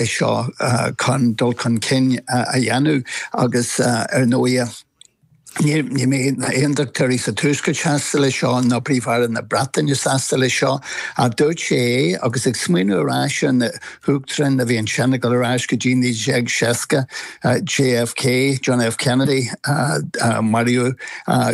é seo chun dul chun cinn a dhéanamh agus ar ndóighe ní bheidh na Aondachtóirí sa Tuaisceart sásta leis seo, ná Príomh-Aire na Breataine sásta leis seo. Ach dúirt sé é agus ag smaoineamh ar ais ar na hUachtaráin a bhí ansin ag dul ar ais go dtí 1960, JFK, John F. Kennedy, maraíodh,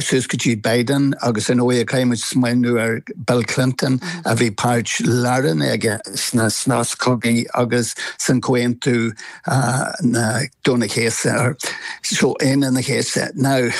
suas go dtí Biden agus ar ndóigh caithfidh muid smaoineamh ar Bill Clinton a bhí páirt lárnach aige sna sna sos cogaí agus san comhaontú Aoine an Chéasta so Aoine an Chéasta now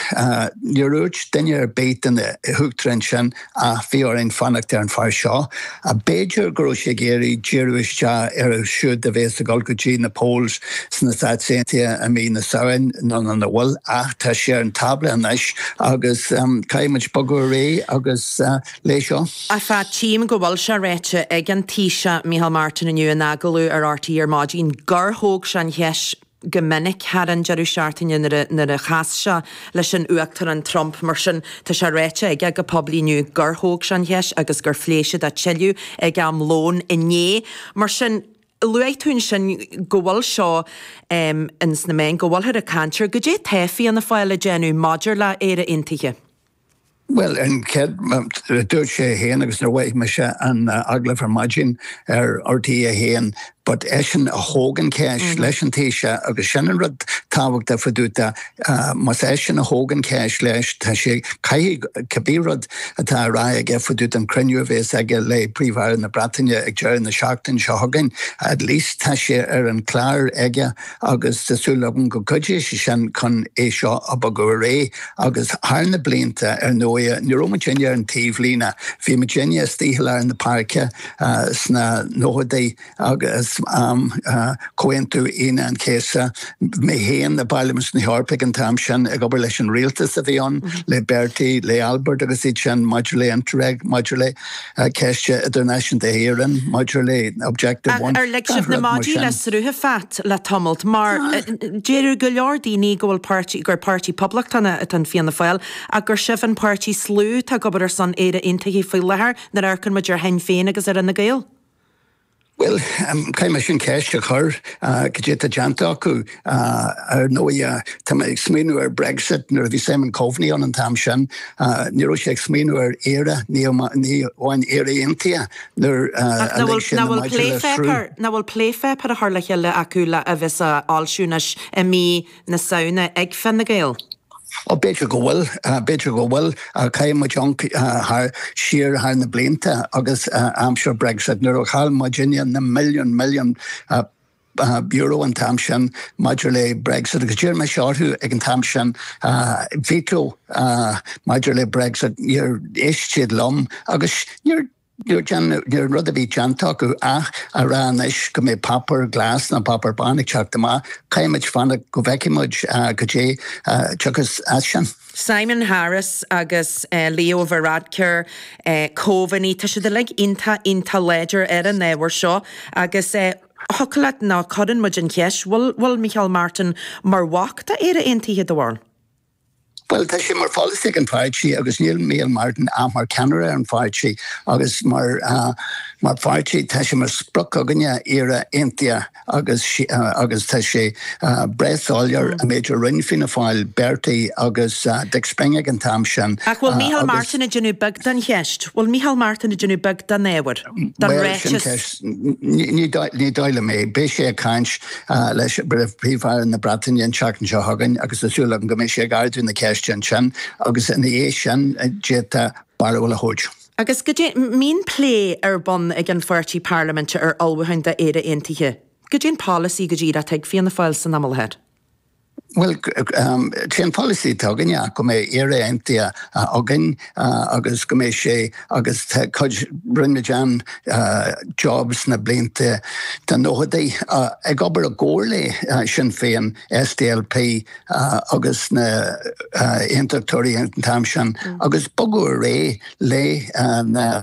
níor dhúirt duine ar bith de na hUachtaráin sin ach bhí orainn fanacht ar an fear seo. B'fhéidir go raibh sé ag iarraidh díriú isteach ar siúd a bhéas ag dul go dtí na polls sna Stáit Aontaithe i mí na Samhain, nó an bhfuil? Ach tá sé ar an tábla anois agus caithfidh muid bogadh ar aghaidh agus leis seo. Sea, tchím go bhfuil sé ráite ag an Taoiseach Micheál Martin inniu in agallamh ar RTÉ ar maidin gur thóg sé an cheist, go minic thar an deireadh seachtaine nuair a chas sé leis an Uachtarán Trump. Mar sin, tá sé ráite aige go poiblí inniu gur thóg sé an cheist agus gur phléigh siad é tuilleadh ag am lóin inné. Mar sin, luaigh tú ansin go bhfuil seo ins na meáin, go bhfuilthear ag caint air. Goidé tá Fianna Fáil ag déanamh maidir le Éire Aontaithe? Bhuel, an chéad rud a dúirt sé fhéin agus nuair a mhoithigh mise an agallamh ar maidin ar RTÉ 1, but eisean a thóg an cheist leis an Taoiseach agus sin an rud tábhachtach fá dtaobh de, más eisean a thóg an cheist leis, tá sé, caithfidh cibé rud atá á rá aige fá dtaobh den chruinniú a bhéas aige le Príomh-Aire na Breataine ag deireadh na seachtaine seo chugainn, at least tá sé ar an chlár aige. agus tá súil agam go gcuideoidh sé sin chun é seo a bhogadh ar aghaidh agus thar na blianta ar ndóigh ní raibh muidinne ar an taobhlíne, bhí muidinne istigh i lár na páirce sna nóchadaí agus am Chomhaontú Aoine an Chéasta, mé féin i bPairlimint na hEorpa ag an t-am sin ag obair leis an rialtas a bhí ann, le Bertie, le Albert agus iad sin maidir le Interreg, maidir le. ceist idirnáisiúnta na hÉireann maidir le Objective One. Ach ar lig sibh na maidí le sruth Pat le tamalt? Mar deir go leor daoine go bhfuil páirtí, gur páirtí Poblachtánach atá in Fianna Fáil ach gur sibh an páirtí is lú atá ag obair ar son Éire Aontaithe faoi láthair nuair a amharcann muid ar Shinn Féin agus ar Fhine Gael. Bhuel, caithfidh mé sin ceist a chur, cad é atá déanta acu? Ar ndóighe, tá mé ag smaoineamh ar Brexit, nuair a bhí Simon Coveney ann an t-am sin, ní raibh sé ag smaoineamh ar Éire, ní amháin Éire Aontaithe, nuair a lig sé na maidí le sruth. Nach bhfuil plépháipéar á chur le chéile acu le a bheas á fhoilsiú anois i mí na Samhna ag Fine Gael? B'fhéidir go bhfuil. B'fhéidir go bhfuil. Chaill muid ionc thar na blianta agus aimsir Brexit nuair a chaill muidinne na milliúin milliúin euro an t-am sin maidir le Brexit agus d'iarr mise orthu ag an t-am sin veto maidir le Brexit. Níor éist siad liom agus níor. Nuair an rud a bhí déanta acu ach a rá anois go mbeidh páipéar glas nó páipéar bán ag teacht amach, caithfidh muid fanacht go bhfeicfidh muid goidé a thiocfas as sin. Simon Harris agus Leo Varadkar, chomh maith, tá siad uilig iontach, iontach láidir ar an ábhar seo agus thiocfadh leat a rá, nó cuireann muid an cheist, bhfuil Micheál Martin mar bhac d'Éire Aontaithe, do bharúil? Bhuel, tá sé mar pholasaí ag an pháirtí, agus níl Micheál Martin ach mar ceannaire ar an pháirtí, agus mar pháirtí tá sé mar sprioc againne Éire aontaithe agus tá sé breá soiléir an méid a rinne Fianna Fáil, Bertie agus Dick Spring ag an t-am sin Ach bhfuil Micheál Martin ag déanamh beag den cheist? Bhfuil Micheál Martin ag déanamh beag den ábhar? Den ráiteas? Bhuel, sin ceist. Ní ní dóigh liom é. Beidh sé ag caint leis Príomh-Aire na Breataine an tseachtain seo chugainn agus tá súil agam go mbeidh sé ag ardú na ceiste ansin agus ina dhiaidh sin d'fhéadfá barúil a thabhairt. Agus goidé, an mbíonn plé ar bun ag an pháirtí parlaiminte ar ullmhúcháin d'Éire Aontaithe, goidé an polasaí go díreach atá ag Fianna Fáil san am i láthair? Bhuel, sé an polasaí atá againne go mbeidh Éire Aontaithe againn agus go mbeidh sé agus tá cuid, rinne muid an-job sna blianta, sna nóchadaí, ag obair i gcomhar le Sinn Féin, SDLP agus na hAontachtóirí an t-am sin agus baineadh réidh le na.